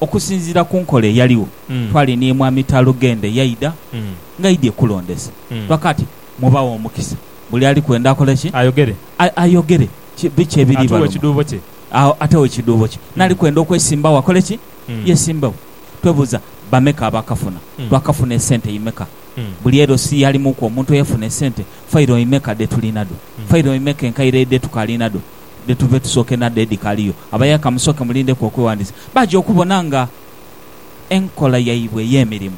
Okusinziira ku nkola eyaligho, twali ni Mwami Talugenda eyaidha nga aidhie kulondesa. Twakaati, Mubaghe omukisa. Buli ali kwenda akole ki? Ayogere. Ayogere biki ebiri Atuwe baluma. ekiduubo kye. Agho atewo ekiduubo kye. N'ali kwenda okwesimbagho akole ki? Yesimbewo. Twebuuza, Bameka abaakafuna? Twakafuna esente imeka? Buli LC yalimuuku omuntu eyafuna esente? Failo imeka dhe tulina dho? Failo imeka enkaire edhe tukaali nadho? dhe tuve tusooke n'adho edhikaliyo. Abayaaka musooke mulindeku okwewandiisa. Baja okubona nga enkola yaibwe ey'emirimu,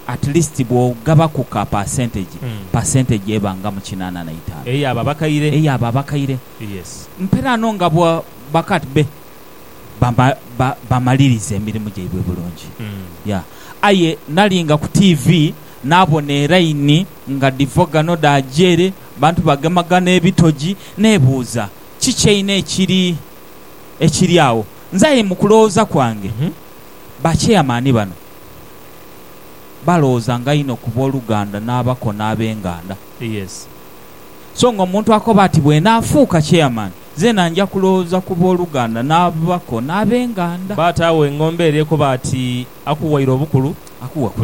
at least bw'ogabaku ka percentage, percentage eba nga mu kinaana na itaanu. Eyo abo abakaire. Eyo abo abakaire. Yes. Mperaano nga bwa, bakat be bama, ba, bamaliriza emirimu gyaibwe bulungi. Ya. Aye nalinga ku tiivi, naabona eraini nga dhiva ghano dhaaja ere. Abantu bagemagana ebitogi. Neebuuza, Kiki einho ekiri, ekiri agho? Nze aye mu kulowooza kwange, bakyeyamaani bano balowoozanga inho ku booluganda n'abako n'ab'enganda. So nga omuntu akoba ati, Bw'enaafuuka kyeyamaani, zeena nja kulowooza ku booluganda n'abako n'ab'enganda. Bata agho engombe eri ekoba ati, Akuwaire obukulu,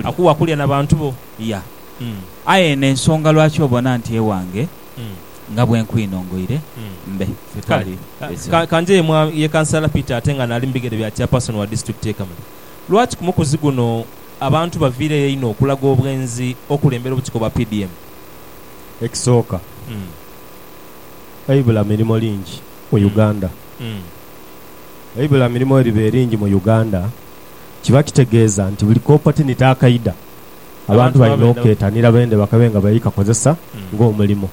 akuwa kulya na bantu bo. Ya. Aye eno ensonga lwaki obona nti ewange nga bwe nkwinongoire mbe. Ffe twali Kale, ka nje yemwa ye Kansala Peter ate nga naali mu bigere bya Chairperson wa Disitulikiti y'e Kamuli. Lwaki ku mukuzi guno abantu baviireyo einho okulaga obwenzi okulembera obukiiko bwa PDM? Ekisooka, eibula mirimo lingi mu Uganda. Eibula mirimo bwe liba eringi mu Uganda, kiba kitegeeza nti buli ka opotinite akaidha, abantu balina okuketanira bende bakabe nga bali kakozesa ng'omulimo.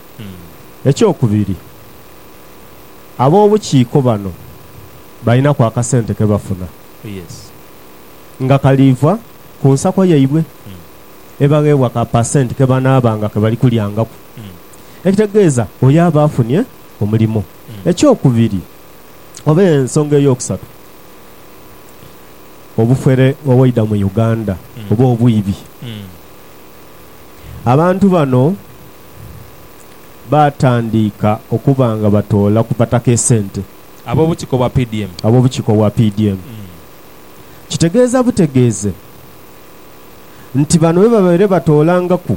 Ekyokubiri, ab'obukiiko bano balinaku akasente ke bafuna nga kaliiva ku nsako yaibwe, ebagheebwa ka pasenti ke banaabanga ke bali kulyangaku, ekitegeeza oyo aba afunye omulimo. Ekyokubiri oba ensonga ey'okusatu. obufere obwaidha mu Uganda oba obwibi. Abantu bano baatandiika okuba nga batoola ku Bataka esente. Ab'obukiiko bwa PDM. Ab'obukiiko bwa PDM. Kitegeeza butegeeze nti bano bwebabaire batoolangaku.